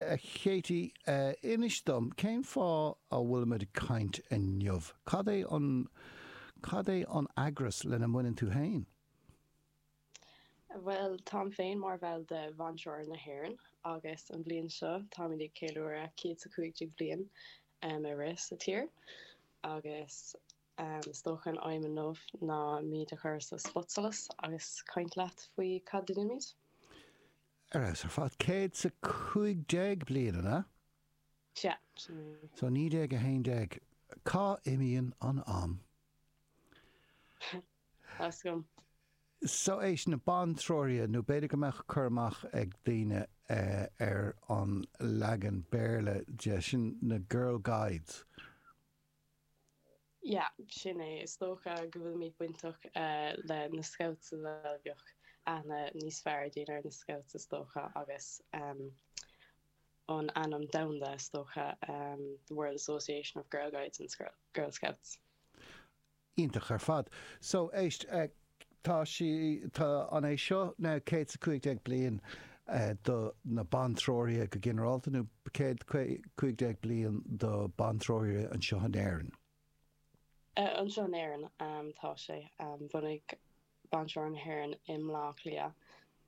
A Khatie, inis dom, cén fáth a bhfuilimid ag caint inniu? Cad é an, cad é an eagras lena mbaineann tú féin? Bhuel, táim féin mar bhall de Bhantreoraithe na hÉireann agus an bhliain seo táimid ag ceiliúradh céad 's a cúig déag bliain a bheith sa tír agus is dócha an aidhm inniu ná muid a chur sa spotsolas agus caint leat faoi cad a dheinimid. Ar fheabhas ar fad. Céad 's a cúig déag bliain, an ea? Sea. So naoi déag a haon déag. Cá n-imíonn an am? So éist, na Bantreoraithe, nó b'fhéidir go mbeadh cur amach ag daoine ar an leagan Béarla de sin, na Girl Guides. Yeah, sin é. Is dócha go bhfuilimid bainteach le na scouts a bheadh aithne níos fearr ag daoine ar na scouts is dócha agus an ainm domhanda is dócha, the World Association of Girl Guides and Girl Scouts. Iontach ar fad. So, éist, tá sí, tá an, é seo an céad 's a cúig déag bliain do na bantreoraithe go ginearálta nó céad cúig déag bliain do bantreoraithe anseo in Éirinn? Eh, anseo in Éirinn, tá sé. Bunaíodh Bantreoraithe na hÉireann i mBleá Cliath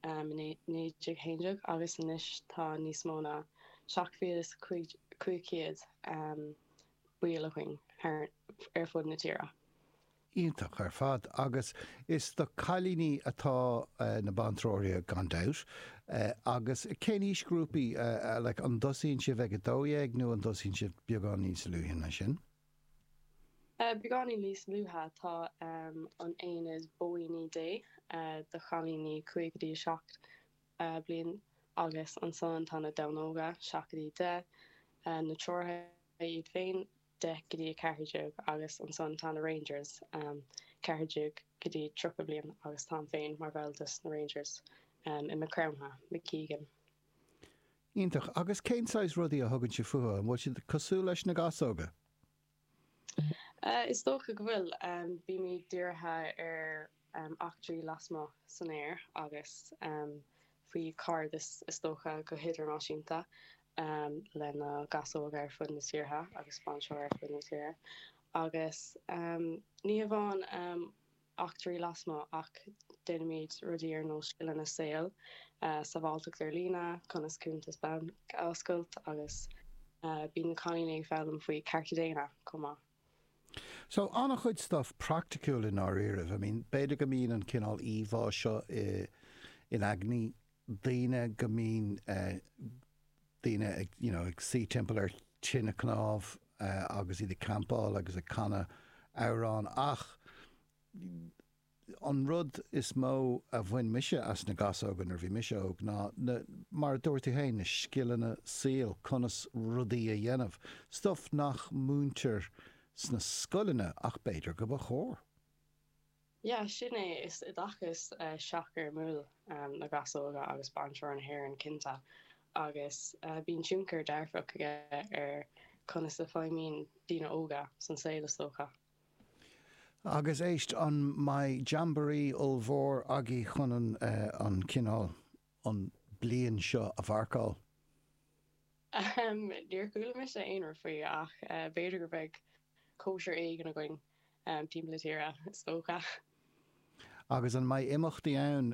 i naoi déag haon déag agus anois tá níos mó ná seacht mhíle is cúig chéad ball againn ar fud na tíre. Iontach ar fad agus is do cailíní atá na bantreoraithe gan dabht. Agus cén aoisghrúpaí? Like an dtosaíonn sibh ag a dó dhéag nó an dtosaíonn sibh beagáinín níos luaithe ná sin? Beagáinín níos luaithe, tá an aonad Bóíní Dé do chailíní 5 go dtí 7 bliain agus ansan tá na Donnóga, seacht go dtí deich, na Treoraithe iad féin, 10-14 agus ansan tá na Rangers, 14-30 bliain agus táim féin mar bhall de sna Rangers i Maigh Chromtha, i gCorcaigh. Iontach! Agus cén saghas rudaí a thugann siad fúthu? An bhfuil siad cosúil leis na gasóga? Is dócha go bhfuil. Bímid dírithe ar eachtraí lasmuigh san aer agus faoi chairdeas is dócha go hidirnáisiúnta le na gasóga ar fud na tíortha agus bantreoraithe ar fud na tíortha agus ní hamháin. eachtraí lasmuigh ach déanaimid rudaí ar nós scileanna saoil, sábháilteacht ar líne, conas cuntas bainc a oscailt agus bíonn na cailíní ag foghlaim faoi chearta daonna chomh maith. So, an-chuid stuff praiticiúil i ndáiríribh. I mean, b'fhéidir go mbíonn an cineál íomhá seo in aigní daoine go mbíonn daoine ag, you know, ag suí timpeall ar tine cnámh agus iad ag campáil agus ag canadh amhrán ach an rud is mó a bhain mise as na gasóga nuair a bhí mise óg ná na, mar a dúirt tú féin, na scileanna saoil, conas rudaí a dhéanamh, stuff nach múintear sna scoileanna ach b'fhéidir go mba chóir. Yeah, sin é, is oideachas seachfhoirmiúil na gasóga agus Bantreoraithe na hÉireann, cinnte, agus bíonn tionchar dearfach aige ar conas a feidhmíonn daoine óga san saol, is dócha. Agus éist, an mbeidh jamboree ollmhór agaibh chun an cineál, an bliain seo a mharcáil? Em, níor chuala mise aon rud faoi, ach b'fhéidir go mbeidh cóisir éigin againn. timpeall na tíre, is dócha. Agus an mbeidh imeachtaí ann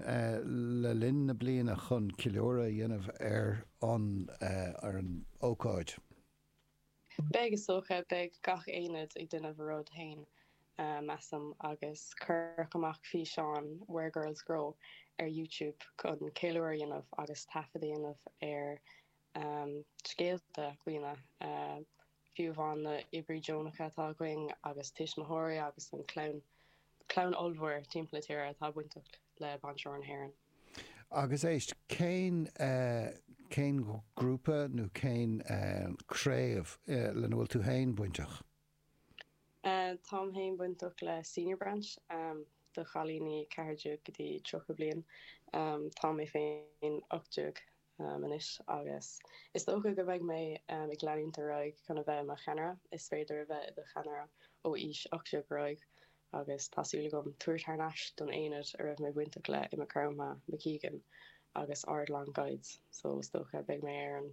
le linn na bliana chun ceiliúradh a dhéanamh ar an ócáid? Beidh, is dócha. Beidh gach aonad ag déanamh a rud féin, measaim, agus cuireadh amach físeán 'Where Girls Grow' ar YouTube chun ceiliúradh a dhéanamh agus taifead a dhéanamh ar scéalta daoine, fiú amháin na oibrithe deonacha atá againn agus tuismitheoirí agus an chlann, clann ollmhór timpeall na tíre atá bainteach le Bantreoraithe na hÉireann. Agus éist, cén, cén grúpa nó cén craobh lena bhfuil tú féin bainteach? Táim féin bainteach le Senior Branch, do chailíní ceathair déag go dtí tríocha bliain. Tá mé féin ocht déag. am anois agus is dócha go mbeidh mé ag leanúint ar aghaidh chun a bheith i mo cheannaire. Is féidir a bheith i do cheannaire ó aois ocht déag ar aghaidh agus tá súil agam tabhairt thar n-ais don aonad a raibh mé bainteach léi i Maigh Chromtha, McEgan agus Ardilaun Guides so is dócha beidh mé ar an